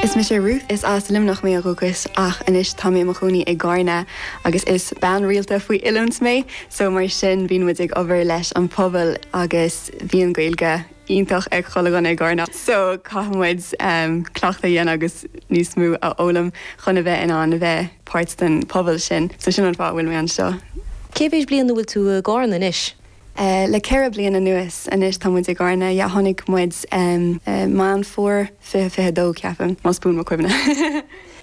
Is mise Ruth, is as Luimneach mé ó dhúchas ach anois tá mé i mo chónaí i gCárna agus is bean rialta faoi oiliúint mé so mar sin bíonn muid ag obair leis an pobal agus bhí an Gaeilge iontach ag chuile dhuine i gCárna so caithfidh muid cleachtadh a dhéanamh agus níos mó a fhoghlaim chun a bheith in ann a bheith páirt den pobal sin so sin an fáth a bhfuil mé anseo. Cé mhéid bliain a bhfuil tú i gCárna anois? Le ceithre bliain anuas anois tá muid i gCarna, yeah. Tháinig muid Meán Fómhair 2022, ceapaim, más buan mo chuimhne.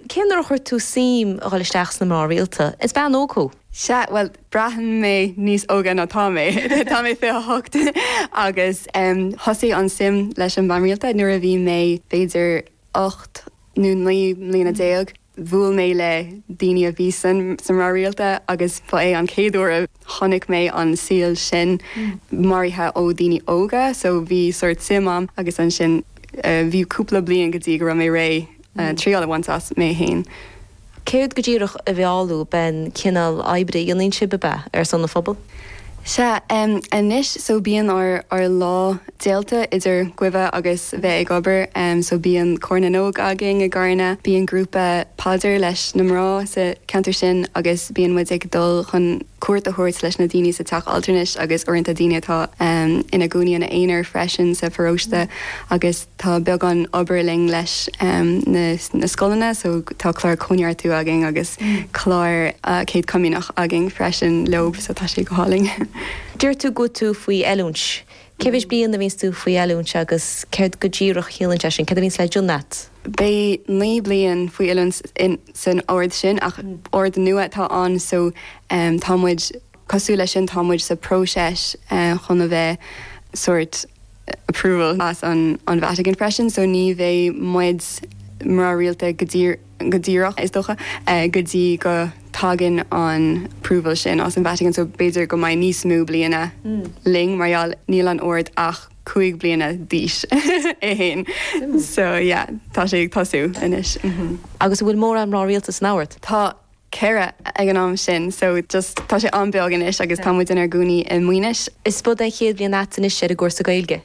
Cén uair a chuir tú suim a dhul isteach sna mná rialta? Is bean óg thú. Sea, bhuel, braitheann mé níos óga ná tá mé. Tá mé 28 agus thosaigh an suim leis an mbeatha rialta nuair a bhí mé b'fhéidir 18 nó 19 mbliana. Bhuail mé le daoine a bhí sa mbeatha rialta agus ba é an chéad uair a chonaic mé an saol sin mairithe ó dhaoine óga so bhí sórt suim a'm agus ansin bhí cúpla bliain go dtí go raibh mé réidh triail a bhaint as mé fhéin. Céard go díreach a mheall thú, ab é an cineál oibre a dhéanann sibh, a bheith ar son an phobail? Sea, anois so bíonn ár lá déalta idir guibhe agus bheith ag obair so bíonn Cór na nÓg againn i gCarna, bíonn grúpa paidir leis na mná sa cheantar sin agus bíonn muid ag dul chun cuairt a thabhairt leis na daoine sa teach altranais agus uaireanta daoine atá ina gcónaí ina aonar freisin sa pharóiste agus Tá beagán obair linn leis na scoileanna so tá clár Cóineartú againn agus clár Céad Comaoineach againn freisin leob so tá sé go hálainn. Deir tú go bhfuil tú faoi oiliúint. Cé mhéid bliain a bhíonns tú faoi oiliúint agus céard go díreach a chiallaíonn sé sin, céard a bhíonns le déanamh a't? Beidh naoi bliain faoi oiliúint san ord sin ach ord nua atá ann so tá muid Cosúil leis sin, tá muid sa próiseas chun a bheith sórt approval as an Vatican freisin, so ní bheidh muid mná rialta go díreach, is dócha, go dtí go dtagann an approval sin as an Vatican, so b'fhéidir go mbeidh níos mó bliana linn mar gheall, níl an Ord ach cúig bliana d'aois, é fhéin, so yeah, tá sé ag tosú anois. Agus an bhfuil mórán mná rialta san ord? Tá, 4 ag an am sin so just tá sé an-bheag anois agus tá muid inár gcónaí i Maínis. Is ab 'in é an chéad bhliain a't anois ar an gcúrsa Gaeilge.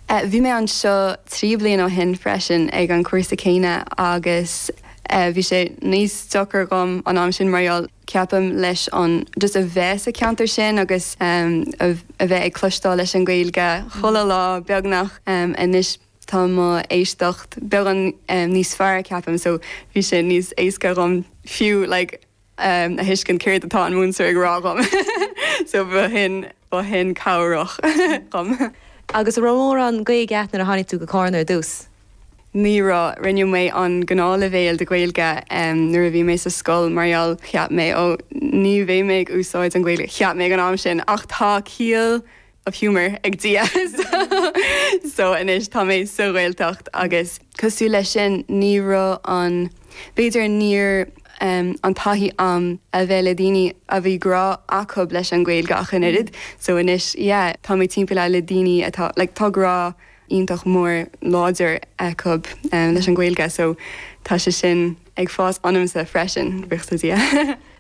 Eh bhí mé anseo trí bliain ó shin freisin ag an cúrsa céanna agus eh bhí sé níos deacair dhom an am sin mar gheall ceapaim leis an just a bheith sa ceantar sin agus em a bheith ag cloisteáil leis an Gaeilge chuile lá beagnach em anois tá mo éisteacht beagán níos fearr ceapaim so bhí sé níos éasca dhom fiú like a thuiscint céard atá an múinteoir ag rá dhom so ba shin ba shin cabhrach dhom. Agus a' raibh mórán Gaeilge a't nuair a tháinig tú go Cárna ar dtús? ní raibh, rinne mé an gnáth leibhéal de Ghaeilge ehm nuair a bhí mé sa scoil mar gheall cheap mé oh ní bheidh mé ag úsáid an Ghaeilge cheap mé ag an am sin ach tá ciall of humour ag Dia so anois tá mé sa Ghaeltacht agus. cosúil leis sin ní raibh an, b'fhéidir níor em, an taithí a'm a bheith le daoine a bhí grá acub leis an Ghaeilge ach an oiread. So anois yeah, tá mé timpeallaithe le daoine atá like tá grá iontach mór láidir acub em leis an Ghaeilge so tá sé sin, ag fás ionamsa freisin, buíochas le Dia.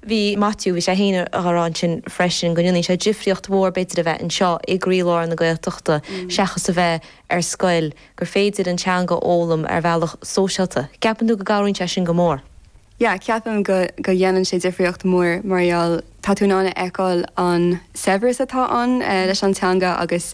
Bhí Maitiú, bhí sé féin ag rá ansin freisin go ndéanann sé difríocht mhór b'fhéidir a bheith anseo i gcroílár na Gaeltachta seachas a bheith ar scoil, gur féidir an teanga a fhoghlaim ar bhealach sóisialta. Ceapann tú go gcabhraíonn sé sin go mór? Yeah, ceapaim go go dhéanann sé difríocht mhór mar gheall tá tú in ann a fheiceáil an saibhreas atá ann leis an teanga agus.